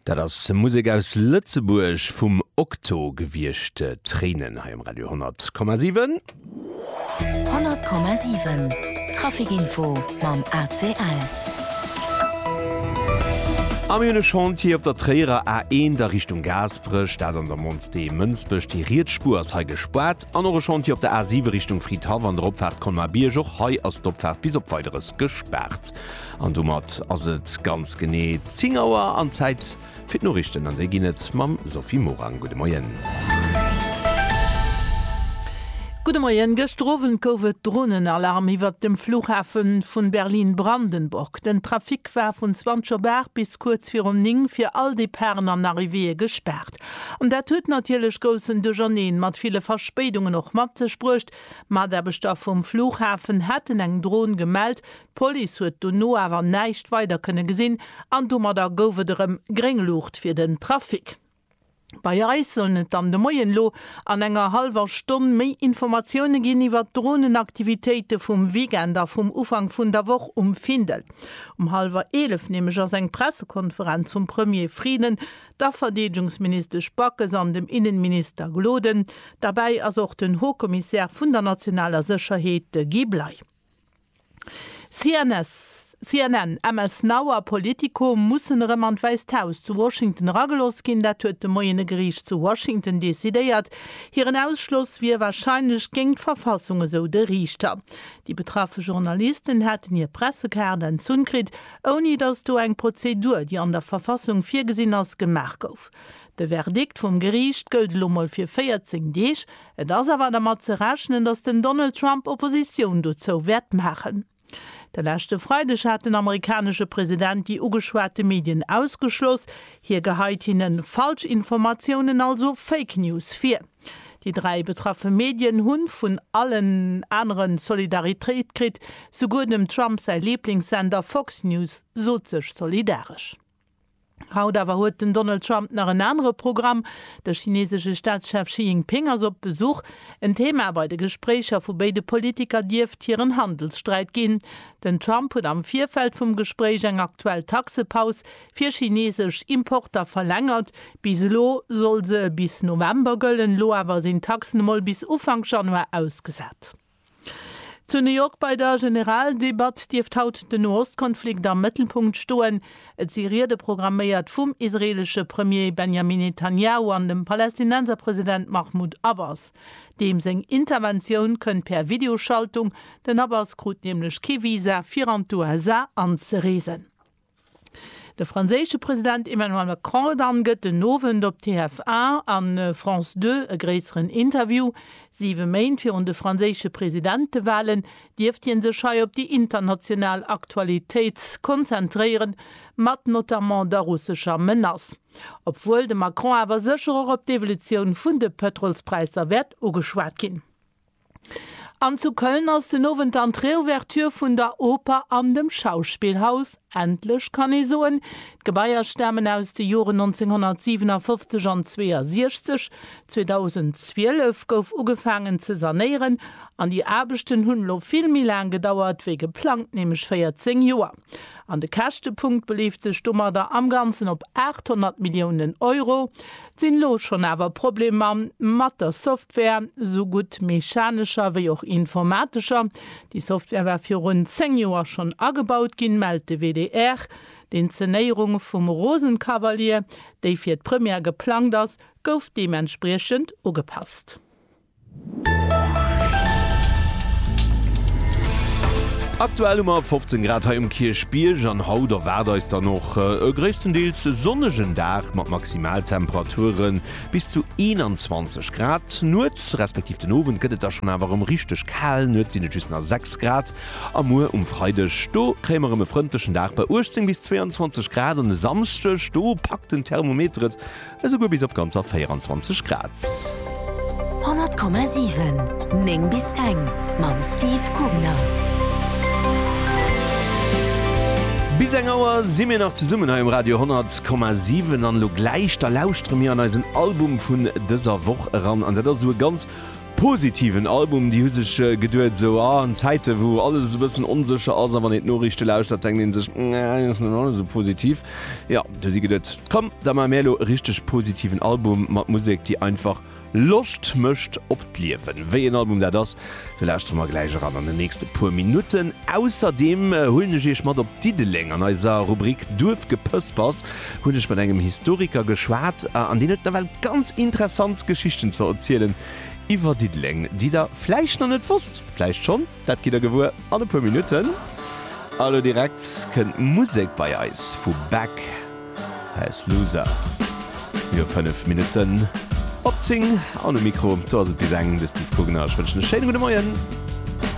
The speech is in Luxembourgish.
Dat ass Musek aus Lëtzebuerg vum Okto gewiescht. Tréinen hei um Radio 10,7. 10,7 Trafikinfo mam ACL. A mir hunn e Chantier op der Tréierer A1, der Richtung Gaasperech, dat an der Monts de Mënsbech. Déi riets Spuer ass hei gespaart. An och e Chantier op der A7 Richtung Fridhaff an der Opfaart Colmar-Bierg. Och hei ass d'Opfaart bis op Weideres gespaart. An domat ass et ganz genee 10 Auer an Zäit fir d'Noriichten. An déi ginn et mam Sophie Morang. Gudde Moien. Gudde Moien. Gëschter Owend gouf et Dronenalarm iwwert dem Flughafe vun Berlin-Brandenburg. Den Trafic war vun 20 op 8 bis kuerz virum 9 fir all Departen an Arrivéeë gespaart. An dat huet natierlech groussen Duercherneen mat ville Verspéidungen och mat sech bruecht. Mataarbechter vum Flughafen haten eng Dron gemellt, D'Police huet dono awer näischt weider kënne gesinn an domadder gouf et erëm gréng Luucht fir den Trafic. Bei eis sollen et dann de Moien elo an enger hallwer Stonn méi Informatioune ginn iwwert d'Dronen-Aktivitéite vum Weekend a vum Ufank vun der Woch um Findel. Um hallwer 11 nämlech ass eng Pressekonferenz vum Premier Frieden, der Verdeedegungsministesch Backes an dem Innenminister Gloden. Derbäi ass och den Haut-Commissaire vun der nationaler Sécherheet, de Guy Bley. CNN, MS Now a Politico mussen erëm an d'Wäisst Haus zu Washington erageloss ginn. Dat huet de Moien e Geriicht zu Washington decidéiert. Hiren Ausschloss wier warscheinlech géint d'Verfassung, esou de Riichter. Déi betraffe Journalisten hätten hir Pressekaart entzunn kritt, ouni datt do eng Prozedur, déi an der Verfassung virgesinn ass, gemaach gouf. De Verdikt vum Geriicht gëllt elo mol fir 14 Deeg. Et ass awer dermat ze rechnen, datt den Donald Trump Oppositioun dozou wäert maachen. De leschte Freideg hat den amerikanesche President déi ugeschwate Medien ausgeschloss. Hie geheit hinne Falschinformatiounen, also Fake News vir. Déi dräi betraffe Medien hu vun allen anere Solidaritéit kritt. Souguer dem Trump säi Liblingssender Fox News sot sech solidaresch. Haut awer huet den Donald Trump nach en anere Programm. De chinesesche Staatschef Xi Jinping ass op Besuch. En Thema bei de Gespréicher vu béide Politiker dierft hiren Handelssträit ginn. Den Trump huet am Virfeld vum Gespréich eng aktuell Taxepaus fir chinesesch Importer verlängert. Bis elo soll se bis November gëllen, elo awer sinn d'Taxen emol bis Ufank Januar ausgesat. Zu New York bei der Generaldebatt dierft haut den Nohostkonflikt am Mëttelpunkt stoen. Et si Riede programméiert vum israeelesche Premier Benjamin Netanjahu an dem Palästinenser President Mahmoud Abbas. Deem seng Interventioun kënnt per Videoschaltung, den Abbas krut nämlech kee Visa fir an d'USA anzereesen. De franséische President Emmanuel Macron dann gëtt den Owend op TF1 a France Deux e gréisseren Interview. Siwe Méint virun de franséische Presidentewalen dierft hie sech hei op déi international Aktualitéit konzentréieren, mat notamment der russescher Menace. Obwuel de Macron awer sécher och op d'Evolutioun vun de Pëtrolspräisser wäert ugeschwat ginn. An zu Köln ass den Owend dann d'Reouverture vun der Oper an dem Schauspielhaus. Endlech kann ee soen, d'Gebaier stamen aus de Joren 1957 an 62. 2012 gouf ugefaangen ze sanéieren an déi Aarbechten hunn elo vill méi laang gedauert wéi geplangt, nämlech 14 Joer. An de Käschtepunkt beleeft sech domadder am Ganzen op 800 Milliounen Euro. Sinn lo schonn awer Problemer mat der Software, sou gutt mechanescher wéi och informatescher. Déi Software war virun 10 Joer schonn agebaut ginn, mellt de WDR. D'Inzenéierung vum Rosenkavalier, déi fir d'Première geplangt ass, gouf deementspriechend ugepasst. Aktuell hu mer 15 Grad hei um Kierchbierg an haut erwaart eis dann och e gréisstendeels sonnegen Dag mat Maximaltemperature bis zu 21 Grad. Nuets respektiv den Owend gëtt et da schonn awer erëm richteg kal, Nuets sinn et just nach 6 Grad a muer um Freideg do kréie mer erëm e frëndlechen Dag bei 18 bis 22 Grad an e Samschdeg do packt den Thermometer et Esouguer bis op ganzer 24 Grad. 100,7, 9 bis eng mam Steve Kugner. Bis eng Auer si mir nach zesummen hei um Radio 100,7 an elo gläich da lauschtere mir an eisen Album vun dëser Woch eran an dat ass esou e ganz. Positiven Album, déi hu sech geduet, esou a Zäite wou alles esou e bëssen onsécher ass a wann een d'Noriichte lauschtert, denkt een sech, nee, ass net alles esou positiv. Jo, hu si geduet, komm, da maache mir elo e richteg positiven Album mat Musek, déi einfach Loscht mécht op d'Liewen. Wéi een Album dat ass, do lauschtere mer gläich eran an den nächste puer Minutten. Ausserdeem huelen ech Iech mat op Diddeleng an eiser Rubrik Duerfgepëspers. hunn ech mat engem Historiker geschwat an deen huet nawell ganz interessant Geschichten ze erzielen iwwer Diddeleng, déi der vläicht nach net wosst. Vläicht schonn, dat gitt der gewuer an e puer Minutten. A lo direkt kënnt Musek bei eis vu Beck, Hä s Loser. Mir hu 5 Minutten op 10 an um Mikro do ass et bis eng de Steve Gugner. Ech wënschen e schéine gudde Moien.